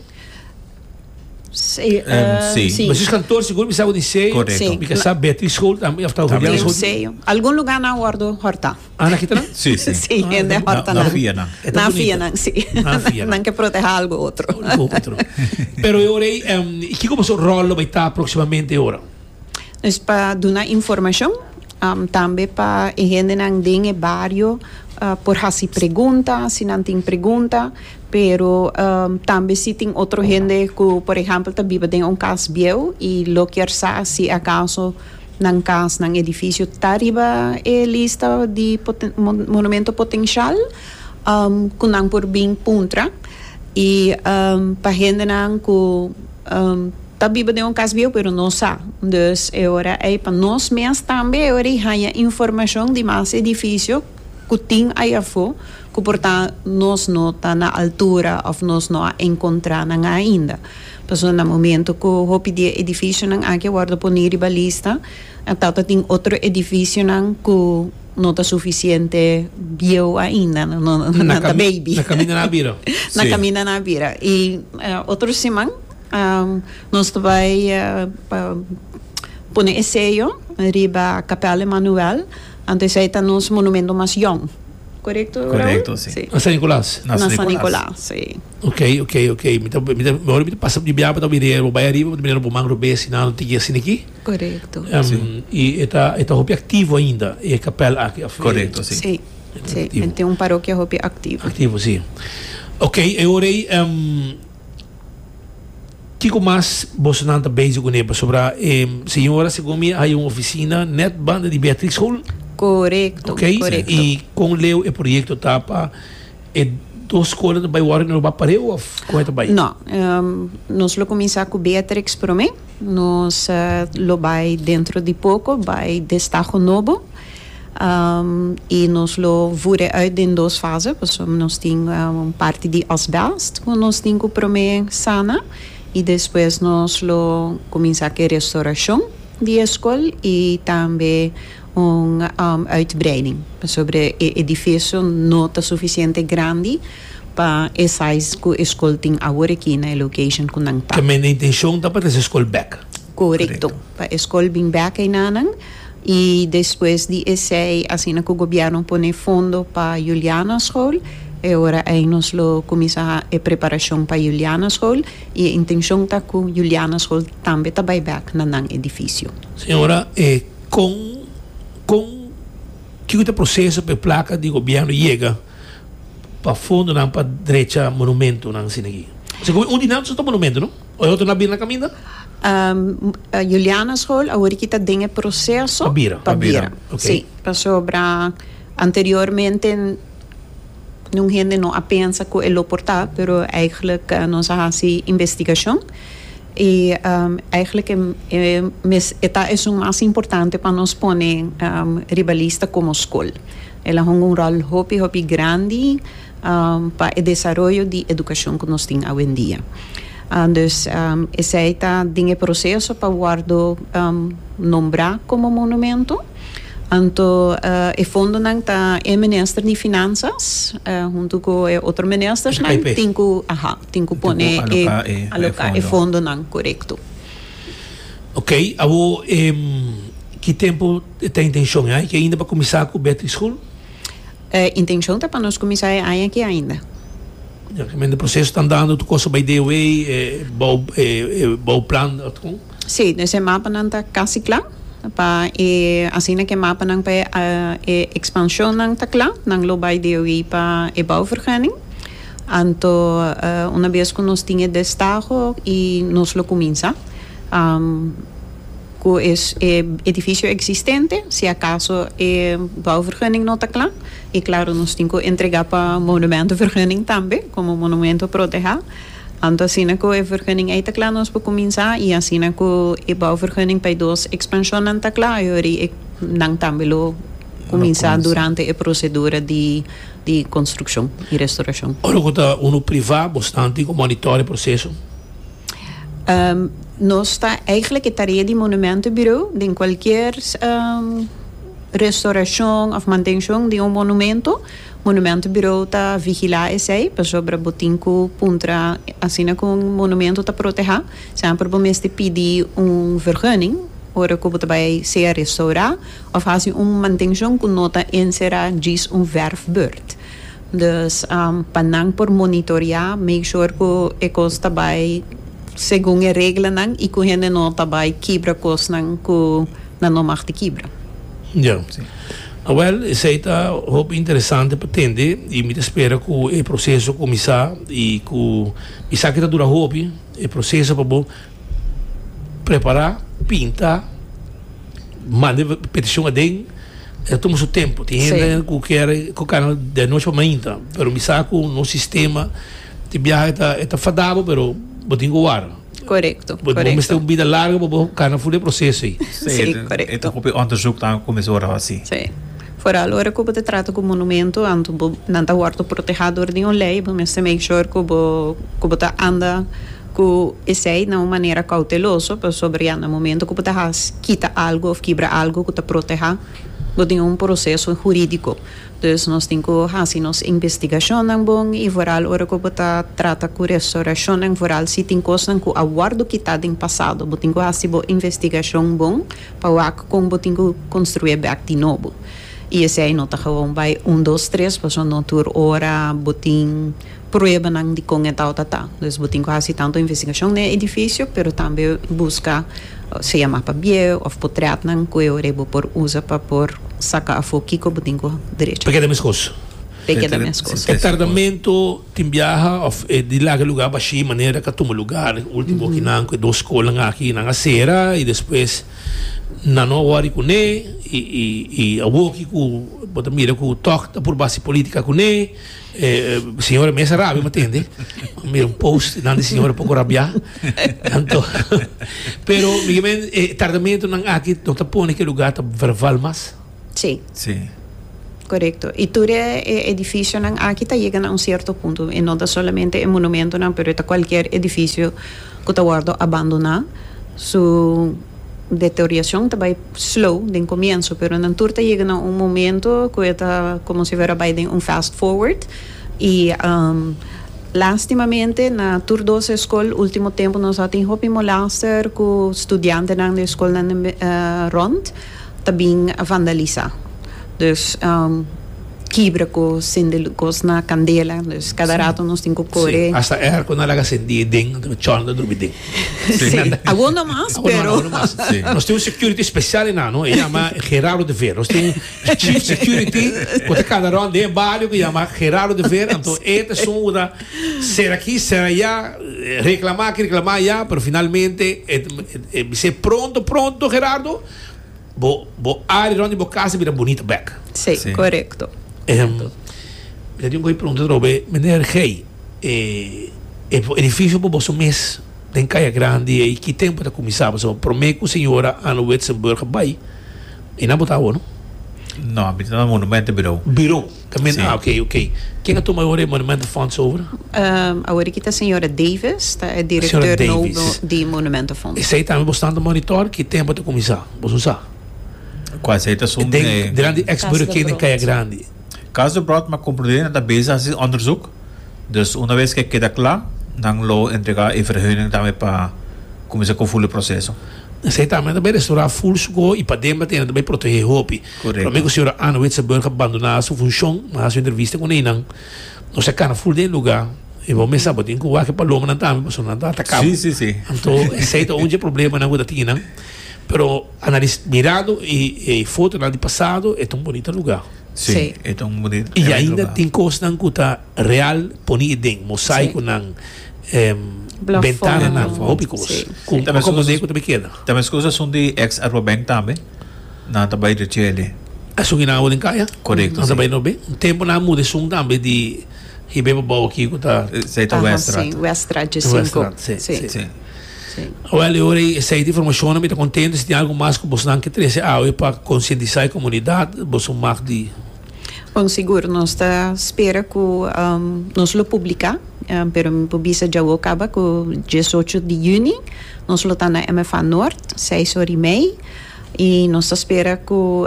Sí, um, uh, sí. sí. Mas kantoor seguro bisa o diseño. Correcto. Sí. Because sa Beatriz School también afta Julián School. Museo. Algún lugar na ordo horta. Ah, na kita Sí, sí. Sí, ah, de horta na. Na fia na. Na fia na, sí. Na fia na. que proteger algo otro. Algo otro. Pero eu rei, um, e que como su rol vai estar próximamente agora? Es pa duna informashon, tambe pa e hendenan den e bario por hasi pregunta si nan tin pregunta, pero tambe si tin otro hende ku por ehèmpel ta biba den un kas bieu i lo kier sa si akaso nan kas, nan edifisio ta riba e lista di poten monumento potensial ku nan por bin puntra i pa hendenan ku. Ta biba den un cas bieu pero no sa. Dus e ora ei pa nos mes tambe e ora di haña informacion di mas edificio cu tin ai afo cu por ta nos no ta na altura of nos no a encontra nan ainda. Pasobra na momento cu hopi di e edificionan aki a wordo poni riba lista a tata tin otro edificionan cu no ta suficiente bieu ainda, nan ta baby, nan camina na bira y otro siman. Nos ta bai pa pone e seyo riba Capel de Manuel, anto esey ta nos monumento mas yong. Corecto, Raul? Corecto, si. Na San Nicolas? Na San Nicolas. Na San Nicolas, si. Ok, ok, ok. Mi ta, mi ta, ora mi ta pasa di biaha pa ta bira e bai ariba pa ta mira bo man robee asina no tin guia asina aki. Corecto. Si. I e ta, e ta hopi activo ainda e capel aki of? Corecto, si. Si, si. E tin un parokia hopi activo. Activo, si. Ok, e ora ey. Kiko mas bosonan ta bezig ku ne pasobra e señora segun mi hay un oficina net banda di Beatrix Hall. Korekto, korekto. Oké, i kon leu e proyekto ta pa e dos skola ta bai wòrdu i no lo bai pareu òf kon e ta bai? No, nos lo kuminsá ku Beatrix promé. Nos lo bai dentro di poko bai Destaho Nobo. y nos lo vure uit den dos fase pasobra nos tin un parti di asbest cu nos tin cu prome sana y despues nos lo cuminsa cu e restoracion di e scol y tambe un uitbreiding pasobra e edificio no ta suficiente grandi pa e size cu e scol tin aworakina e location cu nan ta. Te manda intencion ta pa trece scol bek. Korekto. Pa e skol bin bèk einanan i despues di esei asina ku gobièrnu pone fondo pa Juliana Skol e ora ei nos lo kuminsá e preparashon pa Juliana Skol i e intenshon ta ku Juliana Skol tambe ta bai bèk na nan edifisio. Señora, e kon kon kiko ta e proseso pa e plaka di gobièrnu yega pa fondonan pa drecha monumentonan asina aki? Pasobra un di nan ta monumentu, no? Oy hotu na bira na kaminda? Juliana's Hall aworiki ta den e proseso. Pa bira. Pa bira. Ok. Si, pasobra anteriormente nun hende no a pensa ku e lo por ta, pero eigelijk nos a hasi investigashon i eigelijk e mes e ta esun mas importante pa nos pone riba lista komo skol. El a hunga un ròl hopi hopi grandi. pa e desaroyo di edukashon ku nos tin awendia. Dus esei ta den e proseso pa wòrdu nombrá komo monumentu. Anto e fondonan ta e minister di Finansas huntu ku e otro ministersnan tin ku, aha, tin ku pone e, aloká e fondonan, korekto. Ok, awor, ki tempu e ta intenshon? E hay ke ainda pa kuminsá ku Beatrix School? E intencion ta pa nos cuminsa e aña aki ainda. Ya cu mende proceso ta andando tur cosa bay deo way, e bou e bou plan ot con? Si, des e mapanan ta casi cla pa e asina cu e mapanan pa e expansionnan ta cla nan lo bay deo way pa e bouvergunning. Anto una bes cu nos tin e destaho y nos lo cuminsa. cu e edificio existente, si acaso e bouwvergunning no ta cla, y claro nos tin cu entrega pa monumentovergunning tambe como monumento proteha, anto asina cu e vergunning ey ta cla nos por cuminsa y asina cu e bouwvergunning pa e dos expansionnan ta cla y horay e nan tambe lo cuminsa durante e procedura di di construccion y restauracion. Ora cu ta uno priva bo snan tin cu monitore e proceso. Nos ta eigenlijk e tarea di Monumentenbureau den cualkier restauracion of mantencion di un monumento, Monumentenbureau ta vigila esey pasobra bo tin cu puntra asina cu un monumento ta proteha semper bo mester pidi un vergunning ora cu bo ta bay sea restaura of haci un mantencion cu no ta encerra djis un verfbeurt. Dus pa nan por monitorea, make sure cu e cos ta bay segun e reglanan y cu hende no ta bay kibra cosnan cu nan no mag di kibra. Ya. Awel, esey ta hopi interesante pa tende y mi ta spera cu e proceso cuminsa y cu mi sa cu ta dura hopi e proceso pa bo prepara pinta manda e peticion aden ta tuma su tempo tin hende si cu kier cu cana di anochi pa mainta pero mi sa cu nos sistema di biaha e ta fadabo pero bo tin cu wara corecto bo mester un bida larga pa bo cana funda e proceso ayi. Foral ora ku bo ta trata ku monumentu, anto bo nan ta wòrdu protehá dor di un lei, bo mester make sure ku bo ku bo ta anda ku esei na un manera kouteloso, pasobra ya na momento ku bo ta hasi kita algu òf kibra algu ku ta protehá bo tin un proseso hurídiko. Dus nos tin ku hasi nos investigashonnan bon i foral ora ku bo ta trata ku restourashonnan, foral si tin kosnan ku a wòrdu kitá den pasado, bo tin ku hasi bo investigashon bon. Pa wak kon bo tin ku konstrué bèk di nobo. I esei no ta gewoon bai un dos tres, pasobra no tur ora bo tin pruebanan di kon e tau ta ta. Entonces bo tin ku hasi tantu investigashon den e edifisio, pero tambe buska sea mas pabié òf potrètnan ku e ora ei bo por usa pa por saka afó kiko bo tin ku derecho. Pa keda meskos. Pe keda mescos. E tardamento tin biaha of e di laga lugar bashi manera ka tuma lugar ultimo kinan cu e dos scolan aki nan a cera y despues nan no a worry cune y awo ki cu bo ta mira cu tok ta purba haci politica cune e señora mes a rabia bo tende bo mira un post nan di señora poco rabia anto pero migue men e tardamento nan aki no ta pone cu e lugar ta verval mas. Sí. Sí. Korekto. I tur e edifisionan aki ta yega na un sierto punto. E no ta solamente e monumentonan, pero e ta kualker edifisio ku ta wòrdu abandoná. Su deteriorashon ta bai slow den komienso, pero nan tur ta yega na un momento ku e ta komo si fuera bai den un fast forward. I lastimamente na tur doce skol último tempu nos a tin hopi molaster ku studiantenan di e skolnan rònt. ta bin vandalisá. Dus kibra ku sende lus na kandela, dus kada ratu nos tin ku kore. Sí, hasta e arko nan laga sendí den anto ku chòl nan ta drumi den. Sí, awor no mas, pero. Awor no mas. Nos tin un security spesial enano, e yama Gerardo de Veer. Nos tin un chief security ku ta kanda rònt den e bario ku yama Gerardo de Veer, anto e ta sun ora Ser aki, ser aya, reclama aki, reclama aya, pero finalmente e bis'é pronto, pronto Gerardo, bo, bo área rond di bo casa bira bunita bek. Sí, correcto. Ehm, mi ta tin un cosa pregunta tro be, meneer Gey, e, e edificio por boso mes den Caya Grande ei, ki tempo ta cuminsa? Pasobra prome cu señora Anne Witzenburg a bay, ei no a bota awo no. No, mi ta na Monumento Bureau. Bureau. Carmen, Sí. ah, ok, ok. Ken a tuma awor e Monumento Fonds over? Um, awor aki ta señora Davis, ta e director Señora nou Davis. bo- di Monumento Fonds. Esei tambe bo standa monitor, ki tempo ta kuminsá? Bo sun sa? Kua sei ta sun Den, eh, delant di ex Cas de Burger Brood. Kaya Grandi. Cas de Brood, ma Complutense nan ta bezig hasi onderzoek. Dus una bes ke keda kla, nan lo entrega e verheuning tambe pa kuminsá ku full e proseso. Esei tambe ta bai restaurá full su go i padenbra te nan ta bai protehé hopi. Correcto. Prome cu Sra. Anne Witzenburg a bandona su funcion, ma haci un entrevista cu neynan, nos a cana full den e lugar y bo mester tabata tin cu wak e palomanan tambe pasobra nan ta ataca bo. Sí, sí, sí. Anto esey ta un dje problemanan cu ta tin nan. Pero analis, mirando e, e fotonan di pasado, e ta un bonita lugar. Sí, Sí. e ta un bonit, Y e bonit ainda lugar. tin cosnan cu ta real poni e den, mosaiconan, em, Plafon. ventananan, Plafon. hopi cos. Sí. Cu Tambe escusas- acomodé cu ta be keda. Tambe escusas son di ex Arbobank tambe. Nan ta bai dje chele. Esun ki nan a hopi den kaya. Korekto, si. Nan ta bai nobe. Un tempu nan a muda esun tambe di hib'é pa bou akí ku ta. Esei ta Weststraat. Ahan, si. Weststraat dje sinku. Ta Weststraat, si, si, si. Si. Awèl, e ora ei esei ta informashonnan. Mi ta kontentu si tin algu mas ku bosnan ke trese awe pa konsientisá e komunidat. Boso un mag di. Bon, sigur. Nos ta spera ku nos lo publiká, pero mi por bisa dje awo kaba ku diesocho di yüni nos lo ta na MFA Noord, seis ora i mei. I nos ta spera ku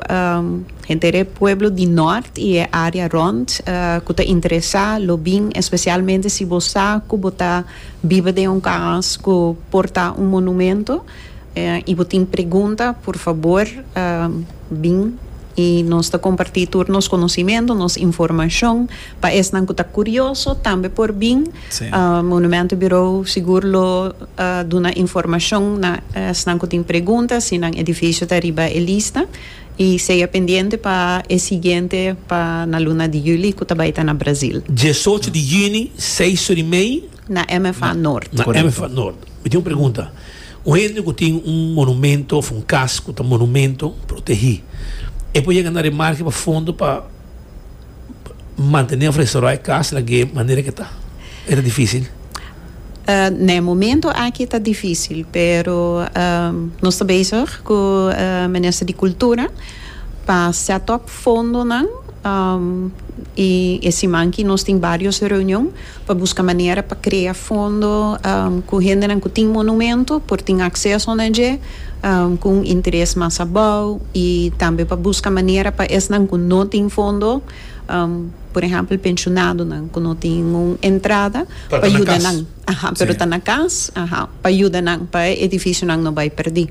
henter e pueblo di nort i e área rònt ku ta interesá lo bin, espesialmente si bo sa ku bo ta biba den un kaas ku por ta un monumento i bo tin pregunta, por fabor bin i nos ta kompartí tur nos konosimentu, nos informashon. Pa esnan cu ta curioso tambe por bin. Monumento Bureau sigur lo duna informacion na esnan cu tin pregunta si nan edificio ta riba e lista. Y sea pendiente pa e siguiente pa na luna di juli cu ta bay ta na Brazil. Diesocho di juni, seis sur y mei. Na MFA Noord. Na MFA Noord. Mi tin un pregunta. Un hende cu tin un monumento of un cas cu ta monumento protehi, e por yega na remarke pa fondo pa. mantene of restourá e kas lagu'é manera ke ta? E ta difísil? Na e momento aki ta difísil, pero nos ta bezig ku e Minister di Kultura pa sèt òp fondonan i e siman aki nos tin vários reunion. pa busca manera pa crea fondo cu hendenan cu tin monumento por tin acceso na dje cu un interes mas abao y tambe pa busca manera pa esnan cu no tin fondo, por ehempel pensionadonan cu no tin un entrada, pa yuda nan, aha, pero ta na cas, aha, pa yuda nan pa e edificionan no bay perdi.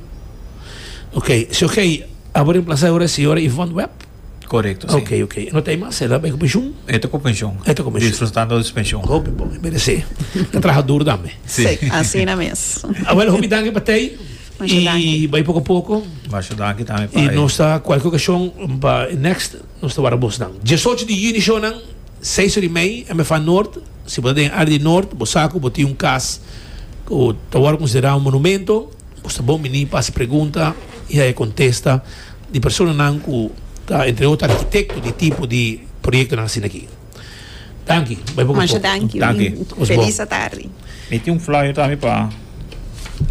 Ok, si ok, abo reemplaza e ora di Señora Yvonne Webb. Correcto, si. Ok, ok. No ta hay mas, sera bay cu pensioen? E ta cu pensioen. E ta cu pensioen. Disfrutando de su pensioen. Hopi bon, e merece. E traha dur tambe. Si. Si, asina mes. Abuelo, hopi danki pa tey. Masha danki. Y bay poco poco. Masha danki tambe pa. Y nos ta cualkier ocasion pa next, nos ta wara bos nan. Diesocho di juni show nan, seis ora y mey, MFA Noord. Si bo ta den área di Noord, bo sa cu bo tin un cas cu ta wor considera un monumento. Bo sa bon biní pa hasi pregunta i haña kontesta di personanan ku ta entre otro arkitekto di tipo di proyektonan asina aki. Danki. Bai poko a poko. Danki. Ku felis atardi. Mi tin un flyer tambe pa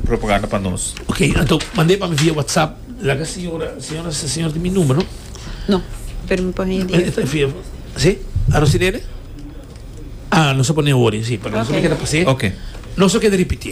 propaganda pa nos. Ok, anto mand'e pa mi via whatsapp. Laga señora, señora sa señora tin mi numero no? No, pero mi por haña di e. Sí? A Rosinele? Ah, nos a pon'e ori, sí, pero nos a keda pas'e. Ok. Nos a keda ripiti'e.